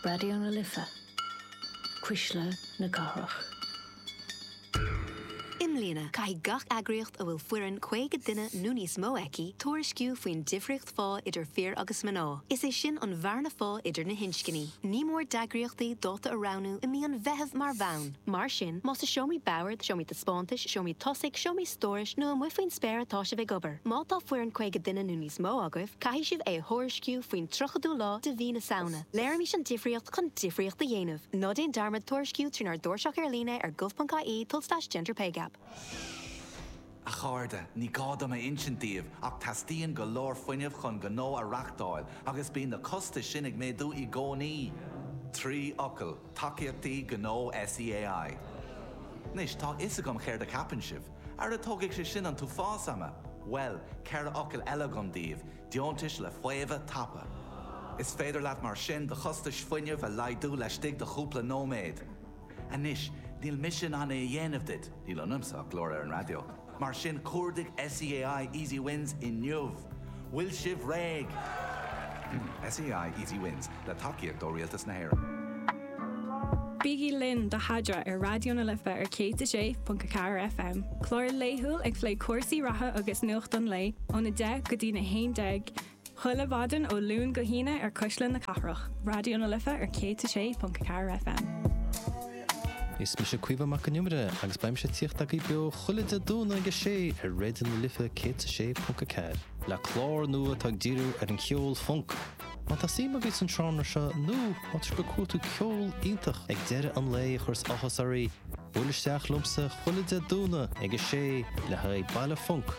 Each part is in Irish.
Raidió na Life, Cuisle na Cathrach. I mbliana, caithfidh gach eagraíocht a bhfuil foireann 50 duine nó níos mó aici tuairisciú faoin difríocht phá idir fir agus mná, is é sin an bhearna phá idir na hinscní. Ní mór d'eagraíochtaí dáta a roghnú i mí an Mheithimh mar bhonn. Mar sin, más i seomraí boird, seomraí taispeántais, seomraí tosaigh, seomraí stórais nó amuigh faoin spéir atá sibh ag obair, má tá foireann 50 duine nó níos mó agaibh, Caithfidh sibh é a thuairisciú faoin 30ú lá de mhí na Samhna. Léirímis an difríocht chun difríocht a dhéanamh. Ná déan dearmad tuairisciú trínár dtairseach ar líne ar gov.ie tulslais gender pay gap. A chairde, ní gá dom a insint daoibh ach teastaíonn go leor fuinnimh chun gnó a reáchtáil agus bíonn na costais sin ag méadú i gcónaí! Trí fhocal, Tacaíochtaí Gnó SEAI. Anois, tá a fhios agam céard a cheapann sibh. Ara tógfaidh sé sin an t-uafás ama! Bhuel, ceithre fhocal eile agam daoibh, deontais le faomhadh tapa. Is féidir libh mar sin do chostais fuinnimh a laghdú laistigh de chúpla nóiméad. Anois, níl mise in ann é a dhéanamh duit, níl ionamsa ach glór ar an raidió, mar sin cuardaigh SEAI Easy Wins inniu! Bhfuil sibh réidh? SEAI Easy Wins, le tacaíocht ó Rialtas na hÉireann. Bígí linn do Haidra ar Raidió na Life ar 106.4 FM, clár laethúil ag plé cúrsaí reatha agus nuacht an lae ón 10 go dtí na 11 chuile mhaidin ó Luan go hAoine ar Cuisle na Cathrach, Raidió na Life ar 106.4 FM. Is mise Caoimhe Mhic an Iomaire agus beimse ag tíocht agaibh beo chuile Dé Domhnaigh ag 6 ar Raidió na Life 106.4 le clár nua atá ag díriú ar an cheol func. Má tá suim agaibh san seánra seo nó má tá sibh ag cuartú ceol iontach ag deireadh an lae a chuireas áthas oraí, buail isteach liomsa chuile Dé Domhnaigh ag a sé le haghaidh Baile Func!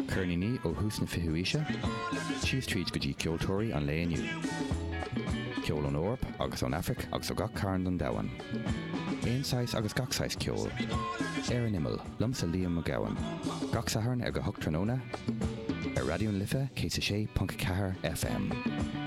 Ceirníní ó thús na fichiú aoise síos tríd go dtí ceoltóirí an lae inniu. Ceol ón Eoraip agus ón Afraic agus ó gach cearn den domhan. Aon saghas agus gach saghas ceoil. Ar an Imeall, liomsa Liam Mac Gabhann. Gach Satharn ag a hocht tráthnóna, ar Raidió na Life 106.4 FM.